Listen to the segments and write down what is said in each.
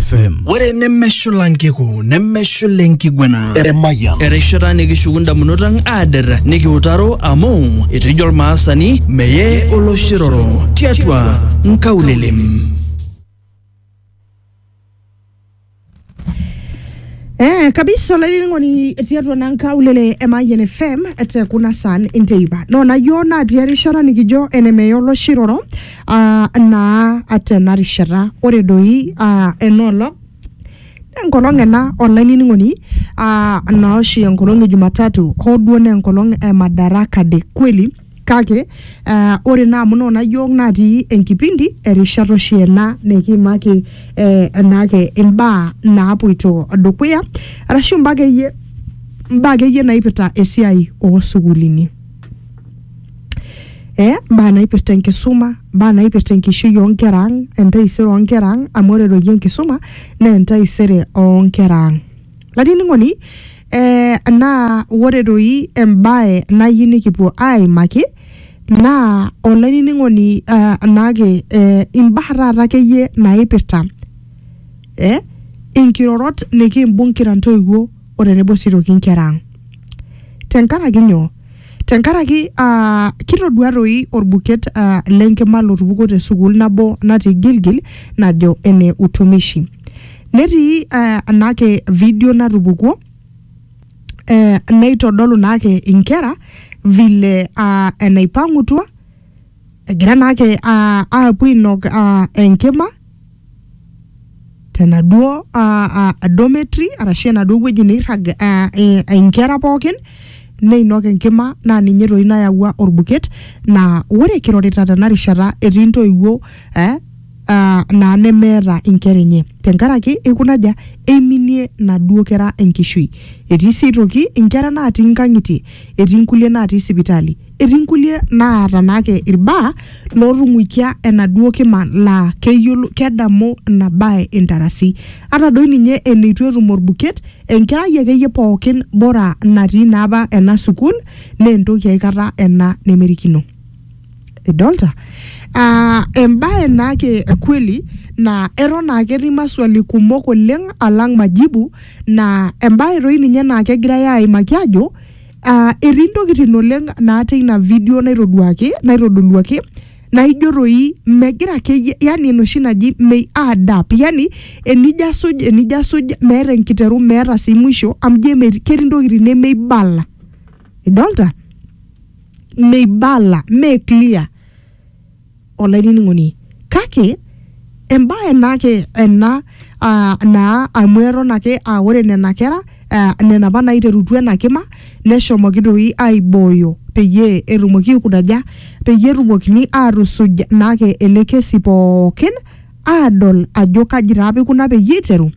FM. ore nemeshula nkiku nemeshula enkiguena Emayian. erishata nikishuku ndamunot ang aader nikiutaro amu etejo olmaasani meye oloshiroro tiatua nkaulelem Eh, kabisa olainining'oni tiatua na nkaulele e Mayian FM te kuna saan enteipa noona yioo natii erishata nikijo enemeye oloshiroro aa naa tena rishata ore doi aa ena olong enkolong ena olainining'oni aa naa oshi enkolong e Jumatatu hoo duo naa enkolong e Madaraka Day kweli kake aa ore naa amu noona iyiook natii enkipindi erishata oshi ena nikiimaki eh, enaake imbaa naapoito dukuya arashu imbaa akeyie imbaa akeyie naipirta esiai oosukulini. eh, mbaa naipirta enkisuma mbaa naipirta enkishui onkera ang entaisere onkera ang amu ore doi enkisuma naa entaisere onkera ang latining'oni eh, naa ore doi embae nayieu nikipuo aimaki naa olainining'oni eh, naake eh, imbaa taata akeyie naipirta eh, inkirorot nikimbung kira ntoiwuo o tenebo sii aitoki inkera ang. Tenkaraki nyoo? Tenkaraki aa kitodua toi olbuket aa le nkima lotupukuo te sukuul nabo natii Gilgil najo ene utumishi. Netii aa ena ake video natupukuo ee neitodolu naa ake inkera vile aa enaipang'utua egira naa ake aa aapuo ainok aa enkima tenaduo uh, dormitory arashu enaduo wueji neirrag uh, eh, inkera pookin neinok enkima naa ninye toi nayawua orbuket naa ore kirorita tena rishata etii intoiwuo eh, uh, naa nemeeta inkera enye tenkaraki ikunaja eiminie naduo kera enkishui etii sii aitoki inkera naatii inkang'itie etii inkulie naatii sipitali Etii nkulie naata naake ilbaa lootung'uikia enaduo kima laa keyiolo kedamu ina bae intarasi. Ata doi ninye eneitu etum olbuket, enkerai akeyie pookin bora natii naa apa ena sukuul naa entoki aikata ena nemerikino. Idolita? Aa embae naake e kweli naa eton naake etii maswali kumok oleng alang majibu naa embae doi ninye naa kegirai aaimaki aajo Ah, etii ntokitin oleng naata ina video naitoduaki naitodoluaki naijo toi megira akeyie yani enoshi naji may add up yani enijo asuj enijo asuj meeta enkiteru meeta sii mwisho amu ijo emetii ketii ntokitin nemeibala idolta meibala mee clear olainining'oni kake embae naake ena ah, naa amu eton ake ah, ore nena kera ah, nena apa naiterutua ena kima neshomoki doi aibooyo peyie etumoki aikunaja peyie etumokini atusuj naake ele kesi pookin adol ajo kaji taa apa ikuna peyie iteru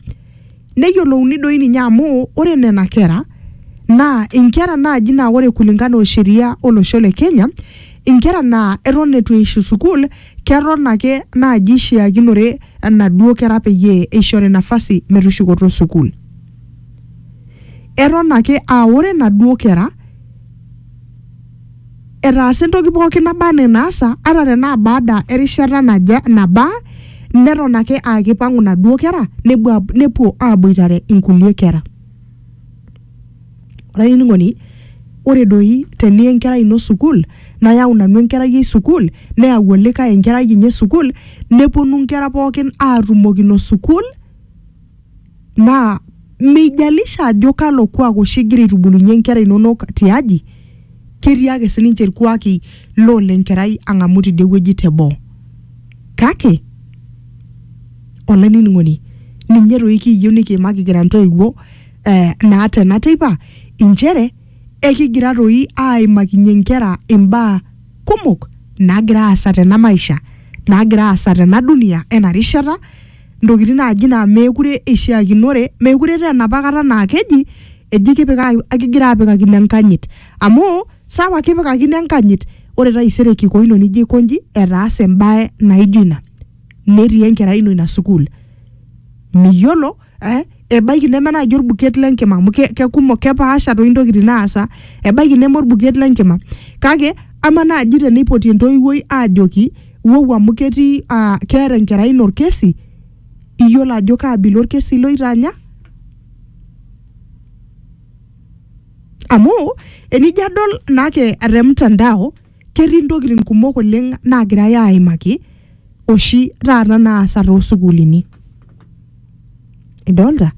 neyiolouni doi ninye amu ore nena kera naa inkera naaji naa ore kulingana o sheria olosho le Kenya inkera naa eton eitu eishu sukuul keton ake naaji ishiakinore enaduo kera peyie eishori nafasi metushukoto sukuul eton ake aa ore inaduo kera etaasa entoki pookin naba anaa enaasa ata tenaa baada erishata naje nabaa neton ake aa kipang'u inaduo kera nepuo ab- nepuo aboitare inkulie kera olainining'oni ore doi teniya enkerai ino sukuul nayau nanu enkerai ai sukuul neyau olikae enkerai enye sukuul neponu inkera pookin atumokino sukuul Naa meijalisha ajo kalo kuak oshi igira aitubulunye nkera inonok tiaji, ketii ake sininche ilkuaki loo le nkerai ang'amu tidie wueji te boo. Kake olainining'oni ninye doi kiyieu nikiimaki kira ntoiwuo eh naa tena teipa inchere ekigira doi aaimakinye nkera imbaa kumok naagira aasa tena maisha, naagira aasa tena dunia ena rishata ntokitin naaji naa meekure eishiakinore, meekure etaa enapa kata naa keji eji kipika kigira apikakino enkanyit amu sawa kipikakino enkanyit ore taisere kiko ino nijo aikonji etaase embae naijo ina netii enkerai ino ina sukuul miyiolo eh, ebaiki neme naaji orbuket lenkima amu ke- kekumok kepaasha toi intokitin naasa ebaiki neme orbuket lenkima kake ama naaji teneipoti entoiwuoi aajoki wou amu ketii ah, keeta enkerai ino orkesi iyiolo ajo kaabila orkesi loitaanya amu enijo adol naake te mtandao ketii ntokitin kumok oleng naagirai aaimaki oshi taata naasa toosukuulini idolta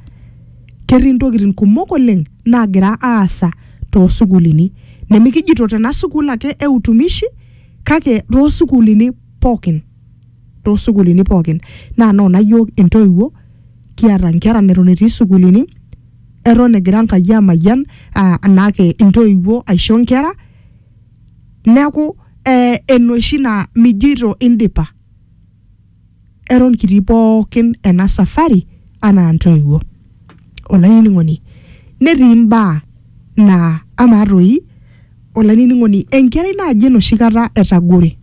ketii ntokitin kumok oleng naagira aasa toosukuulini nemikijito tena sukuul ake e utumishi kake toosukuulini pookin toosukuulini pookin naa noona yiok intoiwuo kiata nkera neton etii sukuulini eton egira Enkai amayian aa anaake intoiwuo aisho nkera Neaku eh enoshi naa mijoito indipa eton kitii pookin ena safari anaa ntoiwuo olainining'oni netii imbaa naa amaa toi olainining'oni enkerai naaji enoshi kata etagore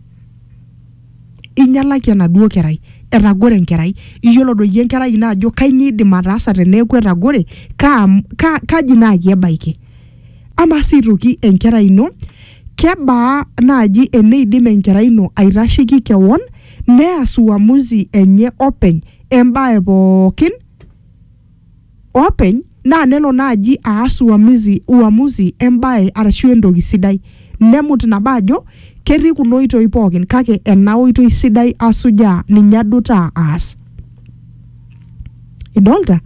inyialaki enaduo kerai etagore enkerai iyiolo doi enkerai ino ajo kanyio idim ataasa teneeku etagore kaa, kaji naaji ebaiki. Amaa sii aitoki enkerai ino, kebaa naaji eneidim enkerai ino aitasheiki kewon neas uamuzi enye openy embae pookin openy naa nelo naaji aas uamuzi, uamuzi embae arashu entoki sidai. Nemut nabo ajo ketii kuna oitoi pookin kake ena oitoi sidai asujaa, ninye adutaa aas. idolta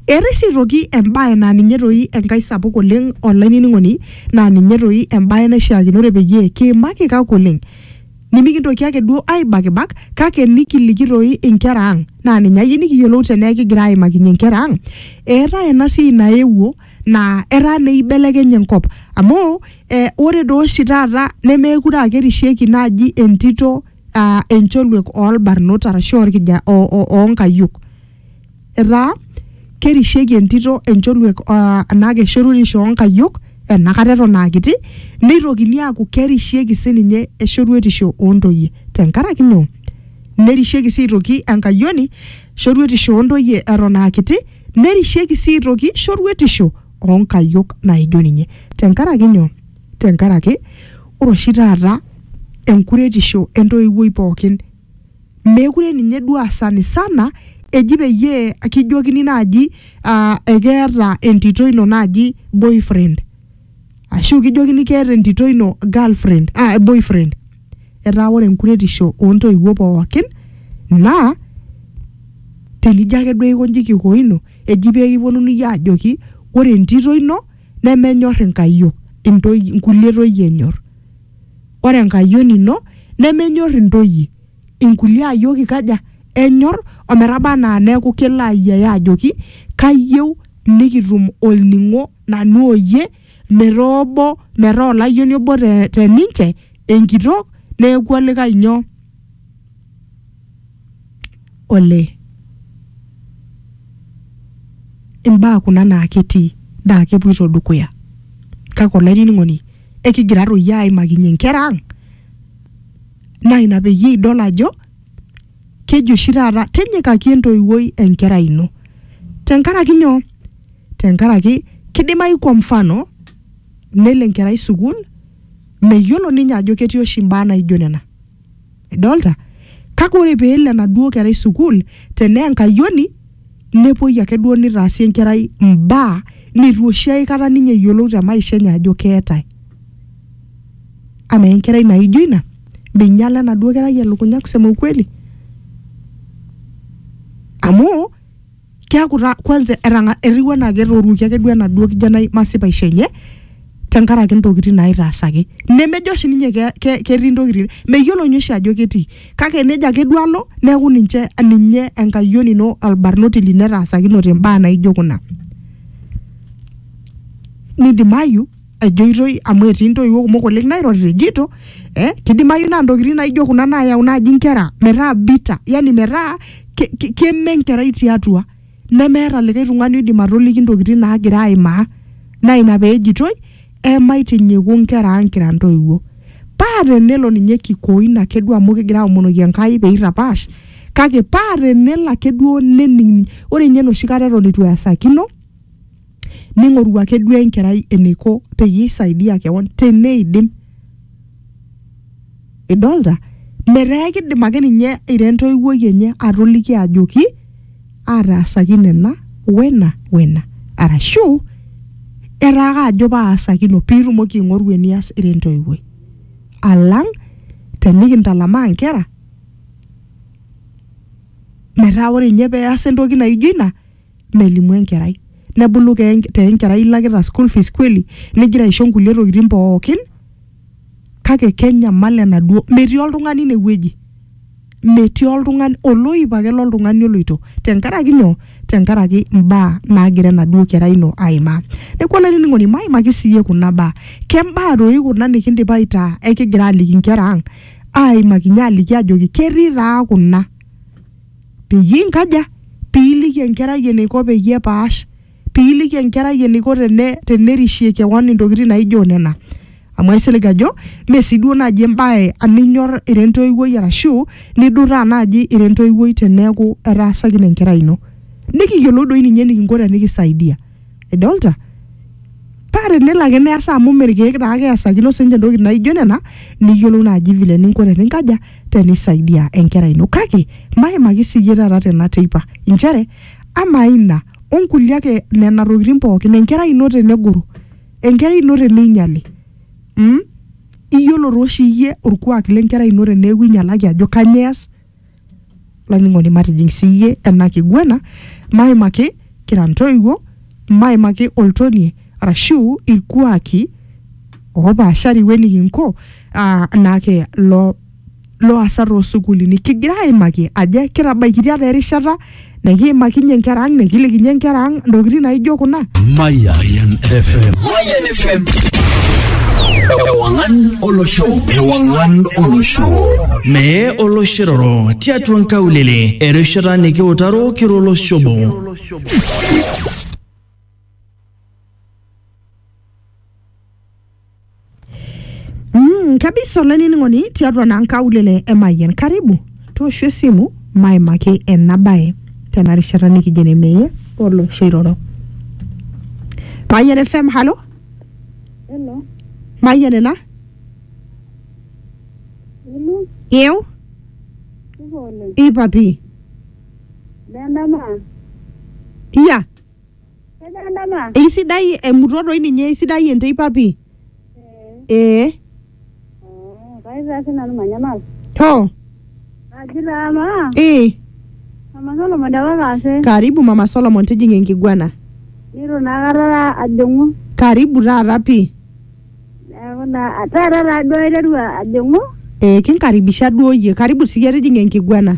eetae sii aitoki embae naa ninye toi enkae sapuk oleng olainining'oni naa ninye toi embae naishiakinore peyie kiimaki kak oleng nimikintoki ake duo aibakibak kake nikiliki toi inkera ang naa ninye ayieu nikiyiolou tenaa ekigira aimakinyie inkera ang eetae ena siai naewuo naa etaa naa eibelekenye enkop amu eh, ore dooshi taata nemeekure akerishieki naaji entito uh, encholuek oolbarnot arashu orkija oonkayiok o, o etaa kerishieki entito encholuek uh, anaa keshoruetisho oonkayiok enakata eton aakiti neitokini aaku kerishieki sininye eshoruetisho oontoyie tenkaraki nyoo nerishieki sii aitoki enkayioni shoruetisho oontoyie eton aakiti nerishieki sii aitoki shoruetisho oonkayiok naijo ninye tenkaraki nyoo tenkaraki ore oshi taata enkuretisho entoiwuoi pookin meekure ninye duo aa sanisana eji peyie kijokini naaji aa ekeeta entito ino naaji boyfriend ashu kijokini keeta entito ino girlfriend aa boyfriend etaa ore enkuretisho oontoiwuo pookin naa tenijo ake duo aikonji kikoino eji pee kiponunui aajoki ore entito ino nemenyor inkayiok intoi, inkulie toyie enyor. Ore enkayioni ino nemenyor intoyie inkulie ayiok ikaja enyor ometaba anaa neeku kelo ayiaya ajoki kayieu nikitum olning'o nanu oyie metaa obo metaa olayioni obo te, te ninche enkitok neeku olikae nyoo olee imbaa kuna naa ketii naa kepuoito dukuya kake olainining'oni ekigira toi aimakinyie inkera ang naa ina peyie idol ajo keji oshi taata tinyikaki entoiwuoi enkerai ino tenkaraki nyoo tenkaraki kidimai kwa mfano nelo enkerai sukuul meyiolo ninye ajo ketii oshi imbaa naijo nena. idolta kake ore peelo enaduo kerai sukuul tenaa enkayioni nepuoi ake duo nitaasi enkerai imbaa nitu oshi aikata ninye eyiolou te maisha enye ajo keetae amaa enkerai naijo ina minyiala enaduo kerai elukunya kusema ukweli amu keaku taa kwanza etang'a- etiu anaa ketoruoki ake duo enaduo kijanai masipaisho enye tenkaraki ntokitin naitaasaki nemejo oshi ninye ke- ke- ketii ntokitin meyiolo ninye oshi ajo ketii kake nejo ake duo alo neeku ninche ninye enkayioni ino olbarnoti lino etaasakinote imbaa naijo kuna nidimayu ejoitoi amu etii intoiwuo kumok oleng nairorita ejito eh, kidimayu naa ntokitin naijo kuna naayau naaji inkera metaa bitter yani metaa ke- ke- keme enkerai tiatua nemeeta likae tung'ani oidim atoliki intokitin naagira aimaa naa ina peejitoi emaitinyiku inkera ang kira intoiwuo paa tenelo ninye kikoin ake duo amu kigira aomonoki Enkai peitapaash kake paa tenelo ake duo nening ore ninye enoshi kata eton itu easakino ning'oru ake duo enkerai eneiko peyie isaidia kewon teneidim idolta metaa ekidim ake ninye ira entoiwuoi enye atoliki ajoki ataasaki nena wena wena arashu etaa ake ajo paasakino piitumoki aing'oru enias ira entoiwuoi alang tenikintalamaa inkera metaa ore inye peasa entoki naijo ina melimu enkerai nebulu ke enk- te enkerai ilakita school fees kweli nigira aisho nkulie tokitin pookin kake kenyamal enaduo metii oltung'ani inewueji metii oltung'ani oloip ake loltung'ani oloito tenkaraki nyoo tenkaraki imbaa naagira enaduo kerai ino aimaa neku olainining'oni maimaki siiyie kuna baa kembaa doi kuna nikindipa aitaa ekigira aliki inkera ang aimakinyie aliki ajoki ketii taa kuna Peyie inkaja? Pee iliki enkerai eneiko peyie epaash. Pee iliki enkerai eneiko tenerishie kewon intokitin naijo nena. Amu aisilig ajo mee sii duo naaji embae ninyor ira entoiwuoi arashu nidurraa naaji ira entoiwuoi teneeku etaasakine enkerai ino. Nikiyiolou doi ninye enikinko tenikisaidia. idolta paa tenelo ake neesa amu mme irkeek taa ake eesakino sinche entoki naijo nena niyiolou naaji vile eninko teninkaja tenisaidia enkerai ino kake maimaki siyie taata tena teipa inchere amaa ina onkulie ake nena tokitin pookin enkerai ino tenegoro enkerai ino teneinyiali mm? iyiolo tooshi iyie orkuak lenkerai ino teneeku inyialaki ajo kanyoo ees laining'oni matijing siyie ena kiguana maimaki kira ntoiwuo maimaki oltonie arashu irkuaki opaashari wenikinko ah, naake lo loasa toosukulini kigira aimaki ajo kitabaikitia taa erishata nikiimakinye nkera ang nikilikinye nkera ang ntokitin naijo kuna Mayan FM. Mayan FM. Ewangan Olosho. Ewangan Olosho. Mee oloshiroro tiatua nkaulele erishata nikiutaro kiro oloshobo. Mm, kabisa olainining'oni tiatua naa nkaulele e Mayian. Karibu tooshu esimu maimaki ena bae tena rishata nikijo ene meyie olosho iroro. Mayian FM, halo? Hello. Mayian ena? Hello. Yeu? Supa oleng. Ipa pii? Nendama. Iya? Eisidai emuto doi ninye, eisidai enteipa pii. Ee. Hoo. Ee. Karibu mama Solomon tijing'a enkiguana. Karibu taata pii. Ee kinkaribisha duo iyie. Karibu siyie tijing'a enkiguana.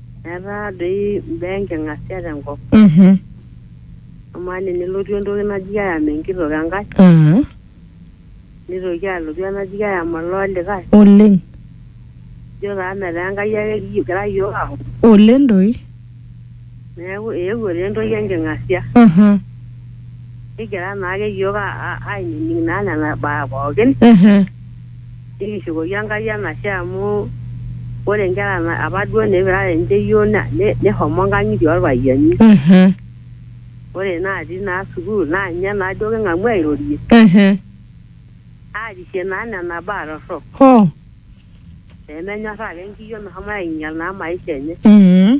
Etaa doi imbaa enking'asia tenkop. Mhm. Amaa ninye nelotu entoki naji ayam enkitok enkae, Ah, nitoki alotu enaji ayam olee olikae. oleng. Ijo taa metaa Enkai ake kigira iyiook aaku. Oleng doi. Neeku eewuo taa entoki enking'asia. Aha. Kigira naake iyiook a- a- ainining naa nena baa pookin. Ehe. Nikishukoki Enkai enashe amu ore inkera na- apa duo neipirare ninche iyioo na- ne- neshomo inkang'itie orpayiani. Ehe. Ore natii naa sukuul naa ninye naa duo king'amu airorie Ehe. aarishie naa nena baa torrok Hoo. pemenyorraa ake enkiyioo meshomo ainyal naa maisha enye. Mhm.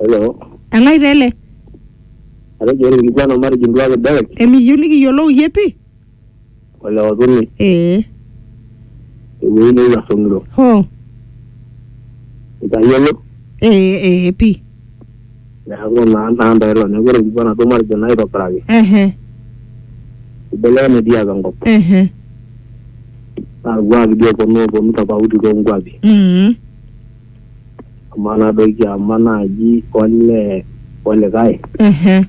Hello. Elai taa ele. Atejo ore ilkikuana matejo nduak e Derek Emiyieu nikiyiolou iyie pi? o le Otuni Ee. tewueji neewuo asong'iro. Hoo. Itayiolo? Ee ee pi. Neeku naa naa ntae ilo. Neeku ore ilkikuana duo matejo naa aitobiraki. Ehe. Ibelekenye dii apa enkop. Ehe. Naa irkuaki dii ooponu ooponu tofauti too nkuapi. Mm. amaa nadoiki ama naaji ole olikae Ehe.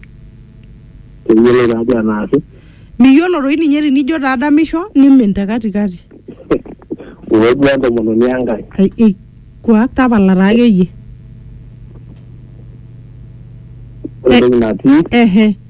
keyioloi taadi enaasi miyiolo toi ninye tinijo taa adamisho nimin te katikati uwejua entomononi enkae Ai- ei, kuak tapala taa akeyie ore Eh. entoki natii ehe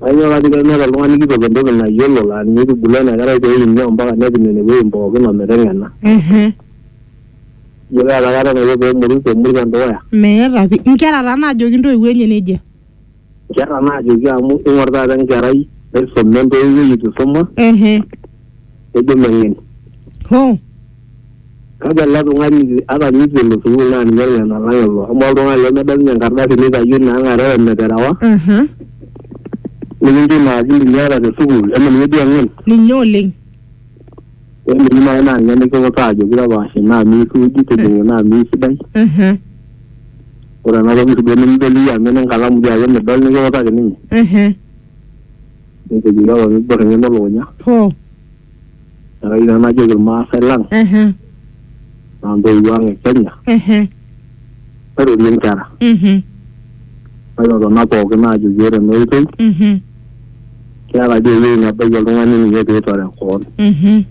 Kanyoo kake kemeeta oltung'ani kitok entoki nayiolo laa ninye eitubulu ena kerai pee eini ompaka nepik nene wuejitin pookin o meteng'ena. Ehe. Ijo keeta kata enaiko pee emurut emurut te dukuya? Meeta pi. Inkera taa naajoki intoiwuo enye nejia. Inkera naajoki amu ing'or taata enkerai naisuma entoiwuoi eitu eisuma. Ehe. kejo meng'en. Hoo. Kake ele tung'ani ata ninye eitu elo sukuul naa ninye ong'en alang ilo amu oltung'ani lemedol ninye enkardasi neitayio ina ang are ometerewa Aha. nikincho ina akili niata te sukuul eme ninye duo eng'en. Ninye oleng. Eme ninye naaji naa ninye nikiutaa ajoki tapaash ina amu eisuuji tijing'a ina amu eisidai. Aha. Ore ena toki sii duo nimidol iyie amu ene nkalamu dii ake midol nikiutaki ninye. Ehe. Netejo papa piibor eng'eno elukunya. Hoo. Neeku ina najoki irmaasai lang Ehe. naa ntoiwuo ang e Kenya Ehe. mairorie nkera. Mhm. Maitotona pookin aajoki ore ena oitoi Mhm. keeta dii ewueji nebaiki oltung'ani ninye piitore koon. Mhm.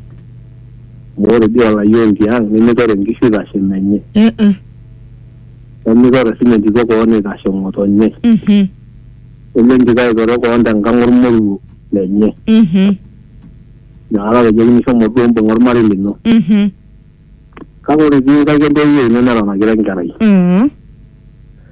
Amu ore dii olayioni tiang nimitore nkishu eitashe menye. Eh eh. Nemitore siininye entito koon eitashe ng'otonye. Mhm. Eme njika aitoro koon tenkang olmoruo lenye. Mhm. Inakata atejoki shomo duo mbung'a olmarei lino. Mhm. Kake ore itii nkaik entoiwuoi ino neton akira enkerai. Mhm.